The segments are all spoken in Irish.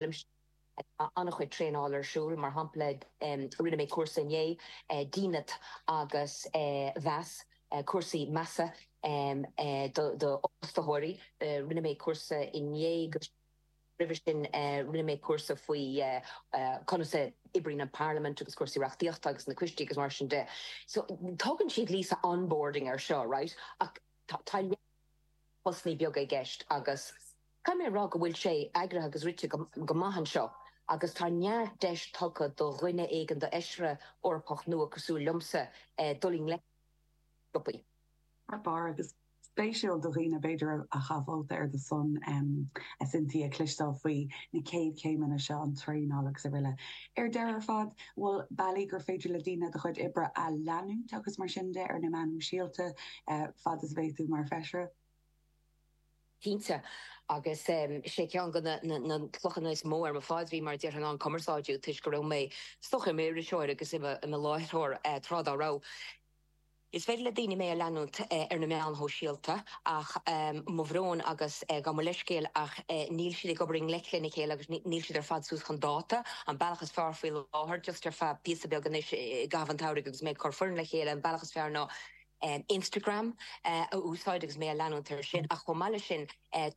Tá an-chuid traenáil ar siúl, mar shampla rinne mé cúrsa inné, dínit agus meas, cúrsaí measa d'fhostóirí. Rinne mé cúrsa inné agus roimhe sin rinne mé cúrsa faoi conas a oibríonn an parlaimint agus cúrsaí reachtaíochta agus na coistí agus mar sin de. So tugann siad Lisa onboarding air seo, right, ach tá a lán postannaí beaga i gceist agus. Caithfidh mé a rá go bhfuil sé eagraithe agus rite go maith anseo agus tá neart deis tugtha do dhuine éigin d'Fheisire Eorpach nua cosúil liomsa dul i ngleic leis an job. Thar barr agus spéisiúil do dhaoine b'fhéidir a chaith vóta ar do son, a Cynthia, cloisteáil faoi na céad chéimeanna seo, an traenáil agus aroile. Ar deireadh ar fad, bhfuil bealaí gur féidir le daoine do chuid oibre a leanúint agus mar sin de ar na meáin shóisialta fad is a bheidh tú mar Feisire? cinnte. Agus sé ceann do na clochanna is mó ar mo phaidrín mar a déarfainn ná an cumarsáidiú toisc go raibh mé i m'iriseoir agus i mo láithreoir tráth dá raibh. Is féidir le daoine mé a leanúint ar na meáin shóisialta ach mo bhrón agus gabh mo leithscéal ach níl siad ag obair i ngleic lena chéile agus níl siad ar fad suas chun dáta. An bealach is fearr faoi láthair, just ar feadh píosa beag anois i gcaitheamh an tsamhraidh agus mé ag cur foireann le chéile, an bealach is fearr ná. Instagram a úsáid agus mé a leanúint ar sin ach chomh maith leis sin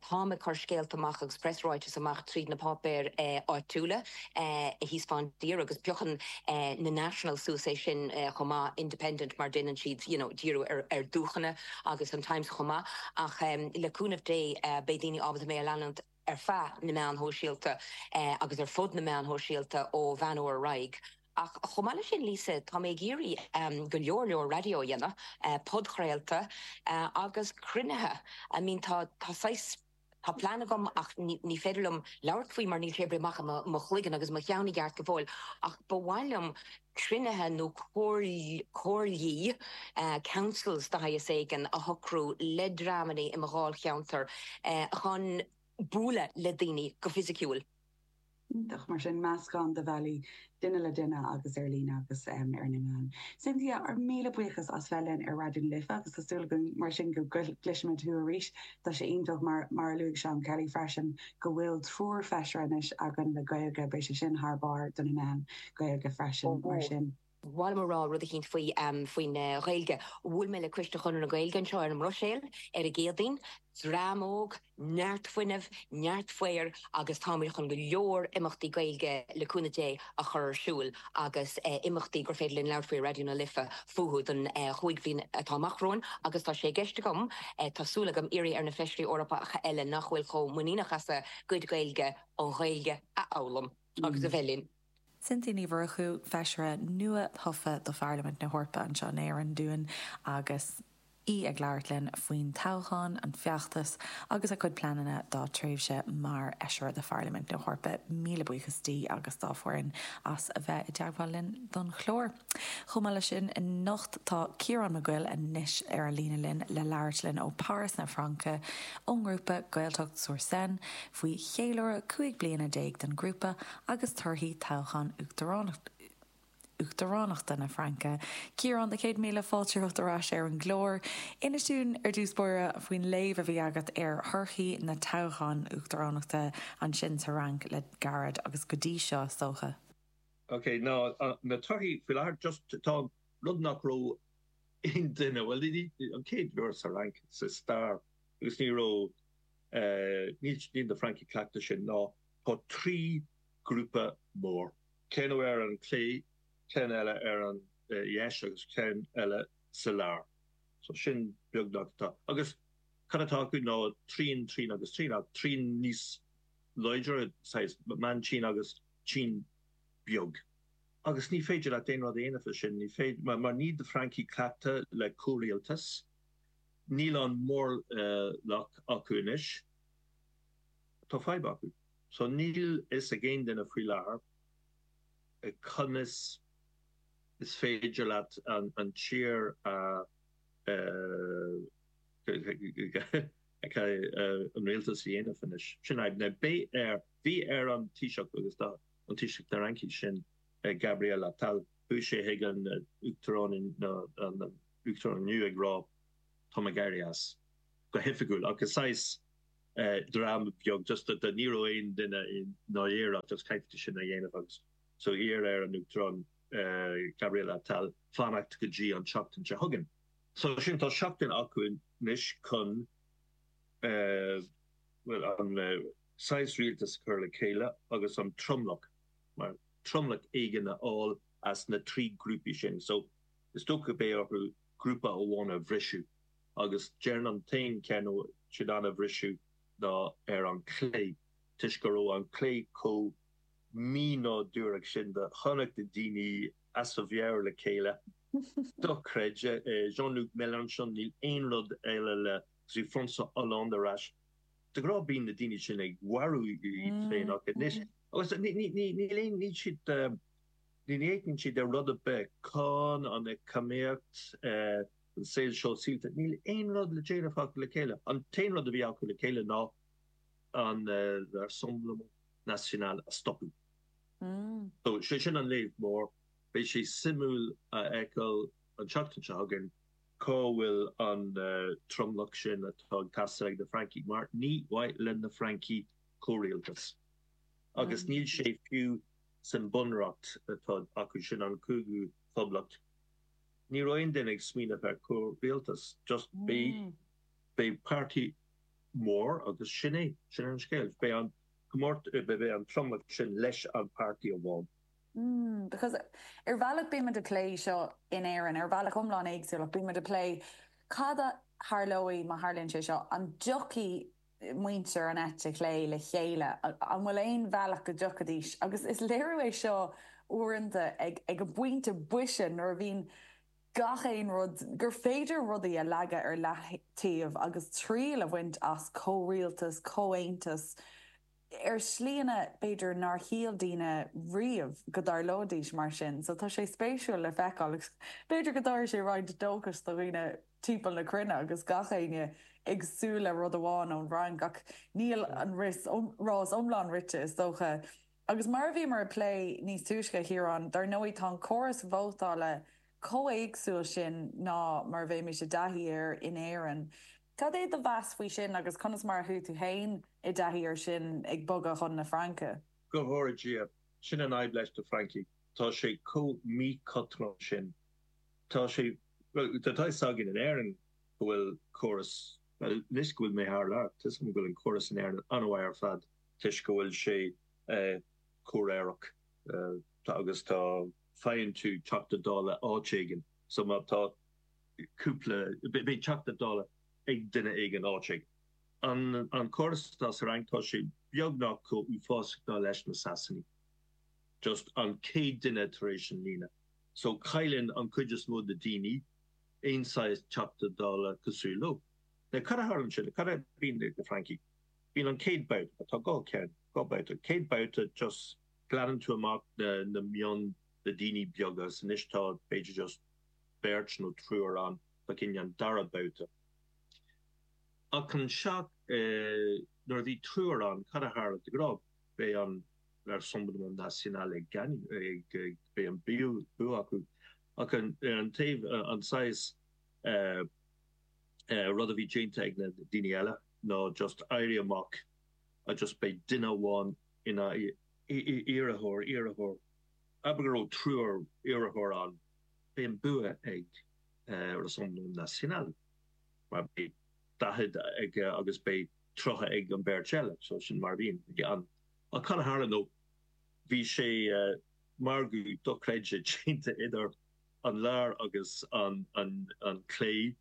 táim ag cur scéalta amach agus press ráiteas amach tríd na páipéir áitiúla thíos fán tír agus piocann na National suas é sin chomh maith, Independent mar déanann siad you know díriú ar dúcheanna agus an Times chomh maith ach le cúnamh Dé beidh daoine ábalta mé a leanúint. ar feadh na meáin shóisialta agus ar fud na meáin shóisialta ó Mheán Fhómhair ar aghaidh. Ach chomh maith leis sin, Lisa, tá mé ag iarraidh go leor leor raidió a dhéanamh, podchraolta agus cruinnithe. I mean tá saghas, tá plean agam ach ní féidir liom labhairt faoi mar níl sé oibrithe amach i mo chloigeann agus i mo cheann i gceart go fóill ach ba mhaith liom, cruinnithe nó comhairlí, councils de shaghas éigin a shocrú le dreamanna i mo dháilcheantar chun bualadh le daoine go fisiciúil. Iontach. Mar sin, meascán de bhealaí, duine le duine agus ar líne agus ar na meáin. Cynthia, ár míle buíochas as bheith linn ar Raidió na Life agus tá súil againn mar sin go gcloisfimid thú arís. Tá sé iontach, mar a luaigh Seán Kelly freisin, go bhfuil triúr feisire anois againn le Gaeilge, beidh sé sin thar barr do na meáin. Gaeilge freisin, mar sin. Ba mhaith liom a rá rud eicínt faoi, faoin Ghaeilge. Bhuail mé le Coiste Chonradh na Gaeilge anseo ar an mBruiséil ar an gCéadaoin. Dream óg, neart fuinnimh, neart faobhair agus táimid chun go leor imeachtaí Gaeilge, le cúnamh Dé, a chur ar siúl agus imeachtaí gur féidir linn labhairt faoi ar Raidió na Life fúthu don chúig mbliana atá amach romhainn agus tá sé i gceist agam, tá súil agam, iarraidh ar na Feisirí Eorpacha eile nach bhfuil chomh muiníneach as a gcuid Gaeilge, an Ghaeilge a fhoghlaim. agus a bheith linn. Cynthia Ní Mhurchú, Feisire nua-thofa do Pharlaimint na hEorpa anseo in Éirinn dúinn agus í ag labhairt linn faoin toghchán, an feachtas agus a cuid pleananna dá tréimhse mar Fheisire do Pharlaimint na hEorpa. Míle buíochas di agus dá foireann as a bheith i dteagmháil linn don chlár. Chomh maith le sin anocht tá Ciarán Mac Guill anois ar an líne linn le labhairt linn ó Páras na Fraince ón ngrúpa Gaeltacht-sur-Seine, faoi cheiliúradh cúig bliana déag den ghrúpa agus torthaí toghchán Uachtaránachta na Fraince, Ciarán na céad míle fáilte romhat ar ais ar an gclár. Inis dúinn ar dtús báire faoin léamh a bhí agat ar thorthaí na dtoghchán Uachtaránachta ansin sa Fhrainc le gairid agus go dtí seo is dócha. Ok, ná na torthaí faoi láthair, just tá rud nach raibh aon duine, bhuel an chéad uair sa Fhrainc sa stair agus ní raibh, Níl na Francaigh cleachta sin ná tá trí grúpa mór, ceann ar an clé, ceann eile ar an dheis agus ceann eile sa lár. So sin beagnach atá. Agus cad atá acu ná trian, trian agus trian, ach trian níos láidir, saghas meántrian agus trian beag. Agus ní féidir leat dada a dhéanamh le sin, ní féidir, mar níl na Francaigh cleachta le comhrialtas, Níl an mórlach acu anois. Tá fadhb acu. So níl a fhios ag aon duine faoi láthair conas is féidir leat an tír a an rialtas a dhéanamh anois. Sin an fhadhb. Now beidh ar, bhí ar an Taoiseach agus tá an Taoiseach na Fhraince sin Gabriel Attal, bhí sé chuig an Uachtarán Uachtarán inniu ag rá táim ag éirí as, go hoifigiúil, ach saghas dráma beag just a ní raibh aon duine i ndáiríre ach just caithfidh tú sin a dhéanamh agus so d'iarr an Uachtarán ar Gabriel Attal fanacht go dtí an tseachtain seo chugainn. So sin tá seachtain acu anois chun bhuel an saghas rialtas a chur le chéile agus an tromlach mar tromlach éigin a fháil as na trí grúpaí sin so Is dócha go beidh orthu grúpa amháin a bhriseadh agus déarfainn an t-aon ceann atá siad in ann a bhriseadh ná ar an clé toisc go raibh an clé comh mí-nádúrach sin do chonac na daoine as a meabhair le chéile. Dochreidte. Jean-Luc Mélenchon, níl aon rud eile le rá François Hollande ar ais. De ghrá bíonn na daoine sin ag mharú iad féin ach anois agus níl aon níl siad eh, Ní fhéachann siad ar rud ar bith cáin an eacnamaíocht, an saol sóisialta, níl aon rud le déanamh acu le chéile. An t-aon rud a bhí acu le chéile ná an Rassemblement National a stopadh. So sé sin an léamh mór. Beidh sé suimiúil a fheiceáil an tseachtain seo chugainn cá bhfuil an tromlach sin atá ag teastáil ag na Francaigh mar ní mhaith le na Francaigh comhrialtas agus níl sé fiú sa mBunreacht atá acu sin, an Cúigiú Poblacht, ní raibh aon duine ag smaoineamh ar chomhrialtas. Just beidh páirtí mór agus sin é. Sin an scéal. Beidh an comórtas, beidh an tromlach sin leis an páirtí amháin. Because ar bhealach beimid a' plé seo in Éirinn ar bhealach iomlán éagsúil ach beimid a' plé cad a tharlóidh má tharlaíonn sé seo, an dtiocfaidh muintir an eite chlé le chéile, an bhfuil aon bhealach go dtiocfaidís, agus is léiriú é seo uaireanta ar an bpointe boise nuair a bhíonn gach aon rud, gur féidir rudaí a leagadh ar leathtaobh agus triail a bhaint as comhrialtas, comhaontas, ar shlíanna b'fhéidir nár shíl daoine riamh go dtarlóidís mar sin so tá sé spéisiúil le feiceáil agus b'fhéidir go dtabharfaidh sé roinnt dóchais do dhaoine timpeall na cruinne agus gach éinne ag súil le rud amháin ón bhFrainc ach níl an rás iomlán rite is dócha. Agus mar a bhíomar ag plé níos túisce a Chiaráin, dar ndóigh tá an córas vótála chomh héagsúil sin ná mar a bheimis i dtaithí air in Éirinn. Cad é do mheas faoi sin agus conas mar a chuaigh tú féin i dtaithí air sin ag bogadh chun na Fraince? Go bhfóire Dia, sin an fhadhb leis na Francaigh, tá sé chomh míchothrom sin. Tá sé, bhuel, tá a fhios againn in Éirinn go bhfuil córas, bhuel, anois go bhfuil mé thar lear, tá a fhios agam go bhfuil an córas in Éirinn an-mhaith ar fad toisc go bhfuil sé comhréireach agus tá, faigheann tú Teachta Dála áit éigin so má tá, cúpla, beidh Teachta Dála ag duine éigin, áit éigin. An córas atá sa Fhrainc, tá sé beagnach chomh uafásach ná leis na Sasanaigh, just an céad duine tar éis an líne, so cailleann an cuid is mó de na daoine aon saghas Teachta Dála cosúil leo. Now cad a tharlaíonn sin, cad a bíonn ag na Francaigh, bíonn an céad babhta, tá dhá ceann, dhá babhta, céad babhta just glanann tú amach na na mion, na daoine beaga, 's anois tá b'fhéidir just, beirt nó triúr ann le haghaidh an dara babhta. Ach ansin nuair a bhí triúr ann cad a tharla de ghnáth? Beidh an Rassemblement National ag beidh an bua acu. Ach ar an taobh an saghas rud a bhí déanta ag na daoine eile ná just éirí amach agus just beidh duine amháin in a iarrthóir iarrthóir. Abair go raibh triúr iarrthóir ann. Beidh an bua ag Rassemblement National mar beidh 40 aige agus beidh 30 ag an bheirt eile so sin mar a bhíonn. Ach cad a tharla ná bhí sé margadh dochreidte déanta idir an lár agus an clé,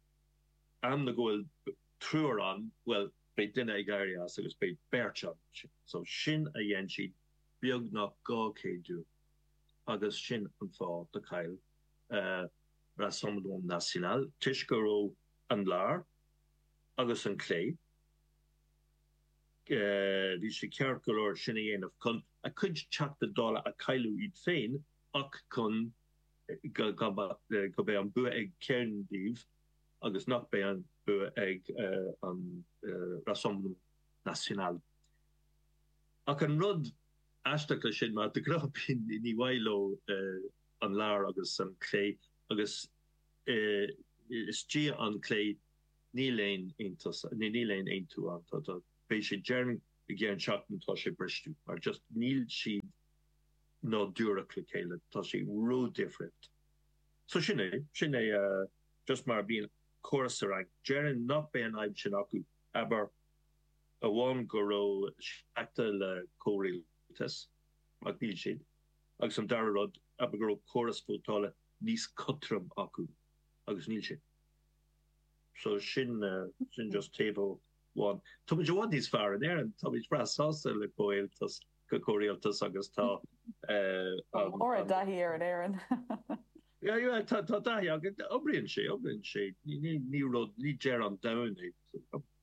am na go bhfuil triúr ann bhuel beidh duine ag éirí as agus beidh beirt ann so sin a dhein siad beagnach 200 uair. agus sin an fáth gur chaill Rassemblement National toisc go raibh an lár agus an clé bhí sé ceart go leor sin a dhéanamh chun a cuid Teachta Dála a chailliúint iad féin ach chun go beidh an bua ag ceann díobh agus nach beidh an bua ag an Rassemblement National. Ach an rud. aisteach leis sin mar de ghnáth bíonn ní maith leo an lár agus an clé agus istigh an clé níl aon aontas níl aon aontú ann tá tá beidh sé déarfainn i gceann seachtain tá sé briste mar just níl siad nádúrtha le chéile tá sé ródhifriúil so sin é sin é just mar bíonn córas sa Fhrainc déarfainn nach beidh an fhadhb sin acu abair amháin go raibh cleachtadh le comhrialtas, ach níl siad, agus an dara rud abair go raibh córas vótála níos cothroime acu, agus níl siad. So sin, sin just taobh amháin. Táimid i bhfad níos fearr in Éirinn, táimid breá sásta le comhrialtas, le comhrialtas agus tá an. Tá ár dtaithí air in Éirinn. Yeah, yeah, tá, tá taithí againn, oibríonn sé, oibríonn sé, ní, ní, ní rud, ní deireadh an domhain é.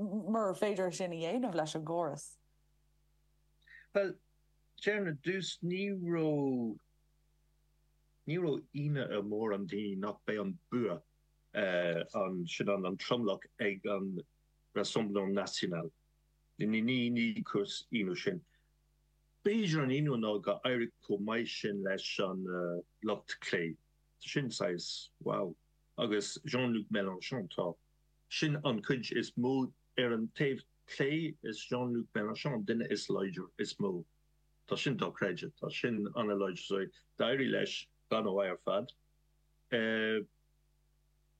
Mura féidir sin a dhéanamh leis an gcóras. Bhuel, déarfainn ar dtús, ní raibh, ní raibh ionadh ar mhórán daoine nach mbeidh an bua, an, sin an, an tromlach ag an Rassemblement National. Ní, ní, ní cúis ionadh sin. B'fhéidir an ionadh ná gur éirigh chomh maith sin leis an lucht clé. Sin saghas, wow. Agus Jean-Luc Mélenchon, tá. Sin an cuid is mó. Ar an taobh clé is Jean-Luc Melenchon an duine is láidre, is mó. Tá sin dochreidte. Tá sin an-láidir. So d'éirigh leis go han-mhaith ar fad.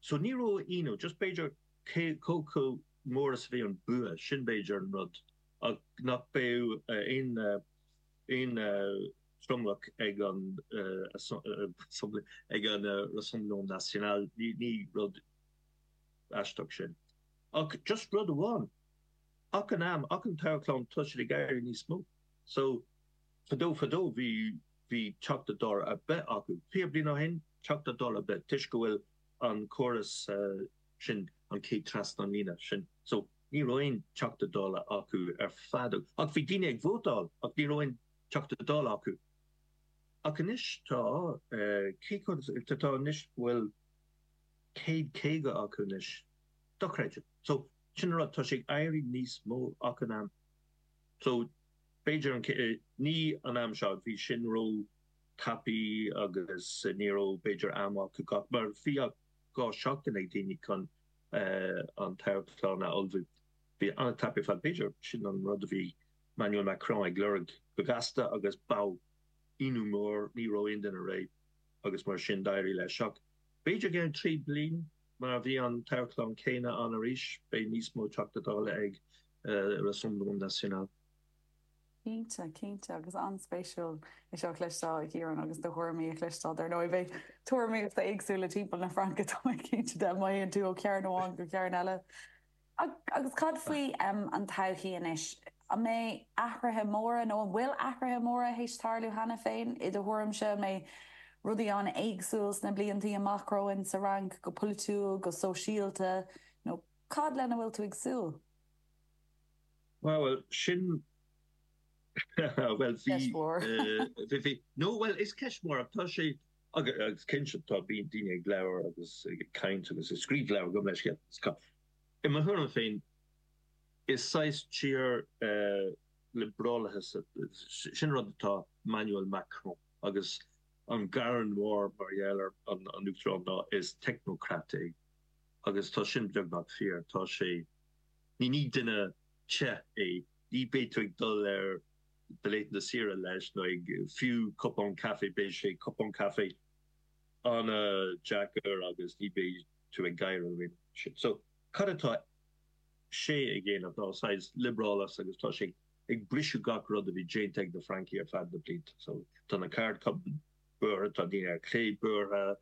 So ní raibh aon ionadh. Just b'fhéidir cé chomh mór is a bhí an vóta, sin b'fhéidir an rud. Ach nach beadh aon aon tromlach ag an ag an Rassemblement National, ní rud. Aisteach sin. Ach just rud amháin, achan am, achan toghchán, tá siad ag éirí níos mó. So, fadó fadó bhí, bhí Teachta Dála ar bith acu. Fiche bliain ó shin, Teachta Dála ar bith, toisc go bhfuil an córas sin, an chéad trasna an líne sin. So, ní raibh aon Teachta Dála acu ar fad. Ach bhí daoine ag vótáil ach ní raibh aon Teachta Dála acu. Ach anois tá, céard atá anois, bhuel. céad caoga acu anois. Dochreidte. So, sin an rud, tá sé ag éirí níos mó achan am. So, b'fhéidir an, ní an am seo, bhí sin ró tapaí agus ní raibh b'fhéidir am acu gach, mar bhí ach dhá seachtain ag daoine chun an toghchán a ullmhú. Bhí an-tapa ar fad. B'fhéidir sin an rud a bhí Emmanuel Macron ag lorg go gasta agus bheadh ionadh mór, ní raibh aon duine réidh agus mar sin d'éirigh leis ach, B'fhéidir go gceann trí bliain má bhíonn an toghchán céanna ann arís beidh níos mó Teachta Dála ag Rassemblement National. Cinnte, cinnte. Agus an-spéisiúil é seo a chloisteáil, a Chiaráin, agus do thuairimí a chloisteáil. Dar ndóigh, beidh tuairimí éagsúla timpeall na Fraince, tá mé cinnte de, má théann tú ó chearn amháin go cearn eile. Agus cad faoi an todhchaí anois? An mbeidh athruithe móra, nó an bhfuil athruithe móra théis tarlú cheana féin, i do thuairimse? An mbeidh rudaí an-éagsúil sna bliantaí amach romhainn, sa Fhrainc, go polaitiúil, go sóisialta, nó cad lena bhfuil tú ag súil? Bhuel, sin ceist mhór. Bhuel, bhí, bhí, bhí, bhí. No, bhuel, is ceist mhór, ach tá sé. Agus cinnte tá daoine ag labhair agus ag caint agus ag scríobh leabhar gomh maith leis agus cad. I mo thuairim féin is saghas tír liobrálaithe sin rud atá Emmanuel Macron agus an gearán mór mar gheall ar an Uachtarán ná is technocrat é agus tá sin beagnach fíor. Tá sé, ní duine te é, ní bheidh tú ag dul ar. dlí na saoire leis, nó fiú cupán caife. Beidh sé, cupán caife, an-deacair agus ní bheidh tú ag gáire. So, cad atá sé ag déanamh ná saghas liobrálachas agus tá sé ag briseadh gach rud a bhí déanta ag na Francaigh ar feadh na blianta. So, tá na ceardchumainn buartha, tá daoine ar chlé buartha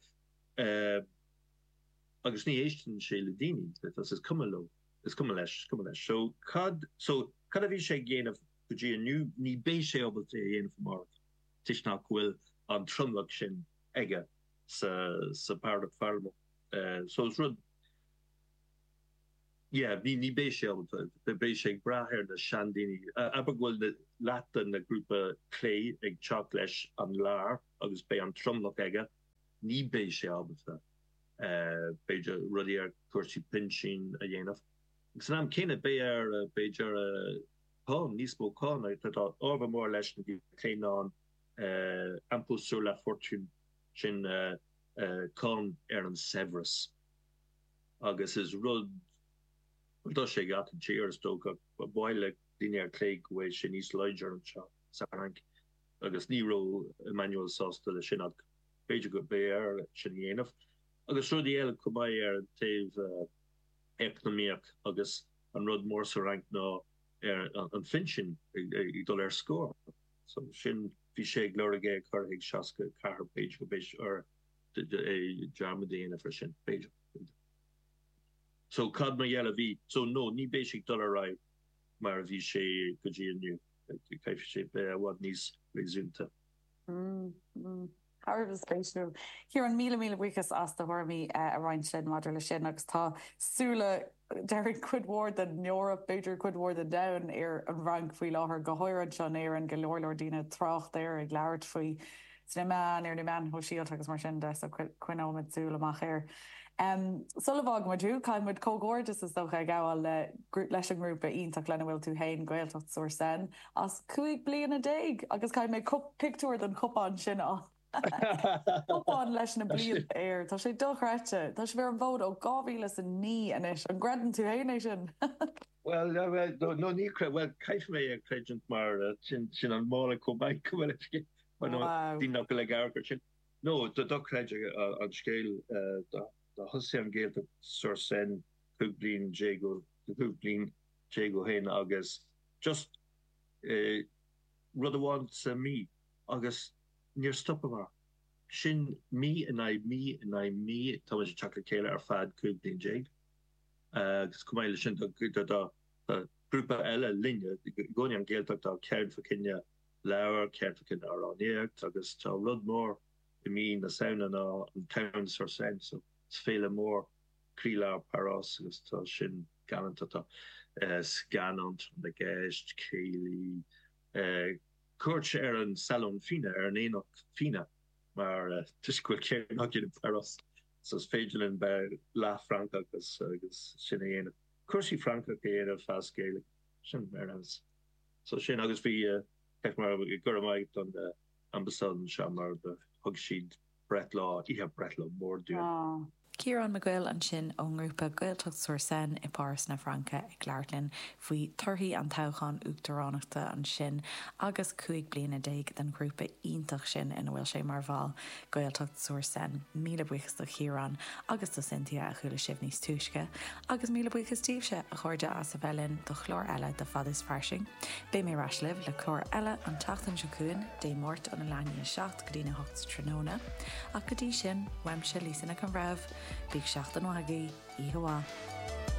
agus ní éisteann sé le daoine, is cuma leo. Is cuma leis, is cuma leis. So, cad, so, cad a bhí sé ag déanamh go dtí inniu? Ní beidh sé ábalta é a dhéanamh amárach toisc nach bhfuil an tromlach sin aige sa, sa pharlaimint. So is rud, yeah, ní, ní beidh sé ábalta, beidh sé ag brath ar na sean-daoine. Abair go bhfuil leath de na grúpa clé ag teacht leis an lár agus beidh an tromlach aige, ní beidh sé ábalta. b'fhéidir, rudaí ar chúrsaí pinsin a dhéanamh. Agus san am céanna beidh air, b'fhéidir, cáin, níos mó cáin, agus tá ábhar mór leis na clé ná an, impôt sur la fortune, sin cáin ar an saibhreas. Agus is rud, rud atá i ngach aon tír is dócha. Ba mhaith le daoine ar clé go bhfuil sé níos láidre anseo sa Fhrainc agus ní raibh Emmanuel sásta le sin ach, B'fhéidir go mbeidh air sin a dhéanamh agus rudaí eile chomh maith ar an taobh eacnamaíoch agus an rud mór sa Fhrainc ná ar an phinsin ag dul ar scor. So sin, bhí sé ag lorg é a chur ag 64, b'fhéidir go mbeidh air dearmad a dhéanamh ar sin, b'fhéidir, b'fhéidir. So cad mar gheall a bhí, so no, ní bheidh sé ag dul ar aghaidh mar a bhí sé go dtí inniu, caithfidh sé bheith i bhfad níos réasúnta. Thar a bheith spéisiúil. Ciarán, míle míle buíochas as do thuairimí a roinnt linn maidir leis sin agus tá súile, déarfainn cuid mhór den Eoraip, b'fhéidir cuid mhór den domhan, ar an bhFrainc faoi láthair, go háirithe anseo in Éirinn, go leor leor daoine ag trácht air, ag labhairt faoi sna meáin, ar na meáin shóisialta agus mar sin de, so coinneoimid súil amach air. Sula bhfágann muid thú, caithfidh muid comhghairdeas is dócha a ghabháil le, leis an ngrúpa iontach lena bhfuil tú fhéin, Gaeltacht sur Seine, as cúig bliana déag agus caithfidh mé pictiúr den chupán sin a chupán leis na blianta air. Tá sé dochreidte. Tá sibh ar an bhfód ó dhá mhíle is a naoi anois. An gcreideann tú fhéin é sin? Bhuel, no ní chreidim. Bhuel, caithfidh mé a chreidiúint mar sin an mála cóbáin go bhfuil aici mar no bhí mé go le gabhar go sin. No, dochreidte an scéal ó thosaigh an Ghaeltacht sur Seine cúig bliana déag ó cúig bliana déag ó shin agus, just rud amháin sa mí agus níor stopamar. Sin mí in aghaidh mí in aghaidh mí táimid ag teacht le chéile ar feadh cúig bliana déag agus chomh maith leis sin tá grúpa eile linne i gcónaí an Ghaeltacht tá ceann fá choinne leabhar, ceann fá choinne amhránaíocht agus tá rud mór i mí na Samhna ná an Samhain-sur-Seine Fest, féile mór. croílár Páras agus tá sin galánta. Tá scannán, Tráth na gCeist, céilí, cuairt ar an Salon Fíona, ar an Aonach Fíona mar toisc go bhfuil ceithre lá déag i bPáras so is féidir linn bheith leath Francach agus sin a dhéanamh. Cúrsaí Francach a dhéanamh as Gaeilge. Sin ar nós. So sin agus bhí, go raibh maith don Ambasáid anseo mar thug siad breithlá, oíche breithlá mór dúinn. Tá. Ciarán Mac Guill ansin ón ngrúpa Gaeltacht-sur-Seine i bPáras na Fraince ag labhairt linn faoi torthaí an toghchán uachtaránachta ansin agus cúig bliana déag den ghrúpa iontach sin ina bhfuil sé mar bhall, Gaeltacht-sur-Seine. Míle buíochas do Chiarán agus do Cynthia, a chuala sibh níos túisce. Agus míle buíochas daoibhse, a chairde, as a bheith linn do chlár eile de Fad is Fairsing. Beidh mé ar ais libh le clár eile an tseachtain seo chugainn, Dé Máirt óna 7 go dtína hocht sa tráthnóna, ach go dtí sin, uaimse Lisa Nic an Bhreithimh, bíodh seachtain mhaith agaibh, oíche mhaith.